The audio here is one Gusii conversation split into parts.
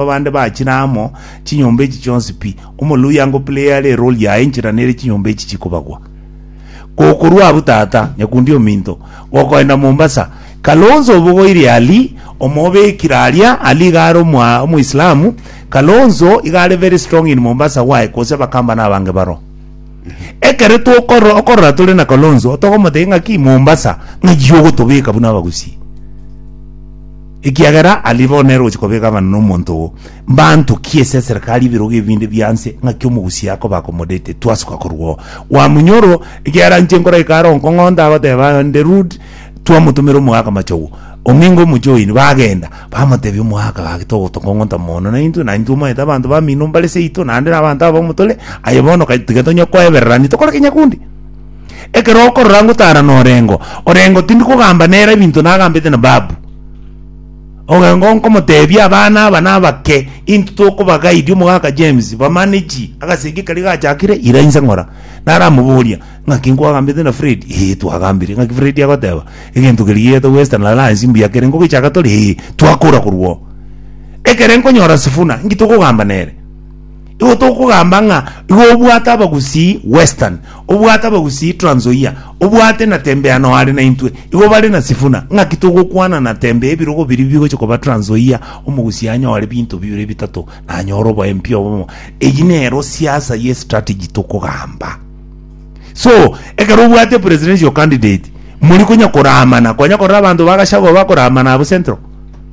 Abande bachire amo chinyomba echi chionsi pi. Omoluya ngo player are role yaye nchera nere chinyomba echi chikobagwa. Gokorwa abwo tata nyakundi ominto gokoenda Mombasa. Kalonzo obogoire Ali omobekire aria Ali iga are omwa omoislamu Kalonzo iga are very strong in Mombasa why kose bakamba na abange baro. Ekere tokoro okorora tore na Kalonzo tokomotebia ng'aki Mombasa ng'achi ogotobeka buna abagusi. Ekiagera aria bono nere ogochia koba egavana nomonto oo, mbantokie ase eserekari y'ebirogo ebinde bia nse, ng'aki omogusi akoba accomodated, twasuka korwa oo. Wamunyoro, ekiagera inche nkore ekare oo, nkong'onta agoteba nde rude, twamotomera omoaka machogu, ong'inga omochie oino, bagenda, bamotebia omoaka, gaki togo tokong'onta mono na intwe, na intwe omanyete abanto bamino mbare seito, naende na abanto abamo tore, aye bono ka tiga tonye koebererani, tokore ke nyakundi. Ekero okorora ngotara norengo, orengo tindi kogamba nere ebinto nagambete na babu. Orengo nkomotebia abana aba nabake into tokoba guide omogaka James ba manage agasegi karia gachakire ira inse ngora. Naramoboria ngaki nkwagambete na Fred ee twagambire ngaki Fred agoteba egento keria gieto western alliance mbuya kere nkogichaka tore ee twakora korwa oo. Ekere nkonyora Sifuna nki tokogamba nere? Igo tokogamba ng'a igo obwate abagusii Western, obwate abagusii Trans Nzoia, obwate na tembe ya noo are naintwe, igo bare na Sifuna, ng'aki togokwana na tembe ya ebirogo biria bigochia koba Trans Nzoia, omogusii anyore binto bibere bitato na anyore oboempio obomo. Eyio nero siasa ye strategy tokogamba. So, ekero obwate presidential candidate, mori konya koramana, kwanya korora abanto ba Gachagua bakoramana abwo Central?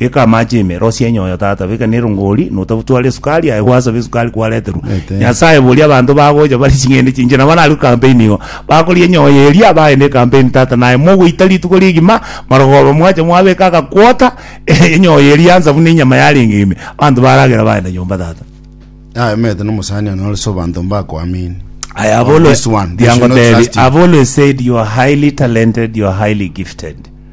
Beka amache ime, rosia enyoyo tata, beka ne erongori, notabutware esukari, aye gwasabe esukari kwareterwa. Ete. Nyasaye boria abanto bagocha bari ching'ende chinche, nabo nari campaign igo. Bakoria enyoyo eria, bagenda ecampaign tata, naye mogoita rituko rigima, marogoba mwacha mwabeka agakwota, enyoyo eria ansa buna enyama yarenge ime. Abanto baragera bagenda nyomba tata. Aye omanyete na omosani one ore so abanto mbakoamini. I have Or always, this one, they should not diangotebi, trust you. I've always said you are highly talented, you are highly gifted.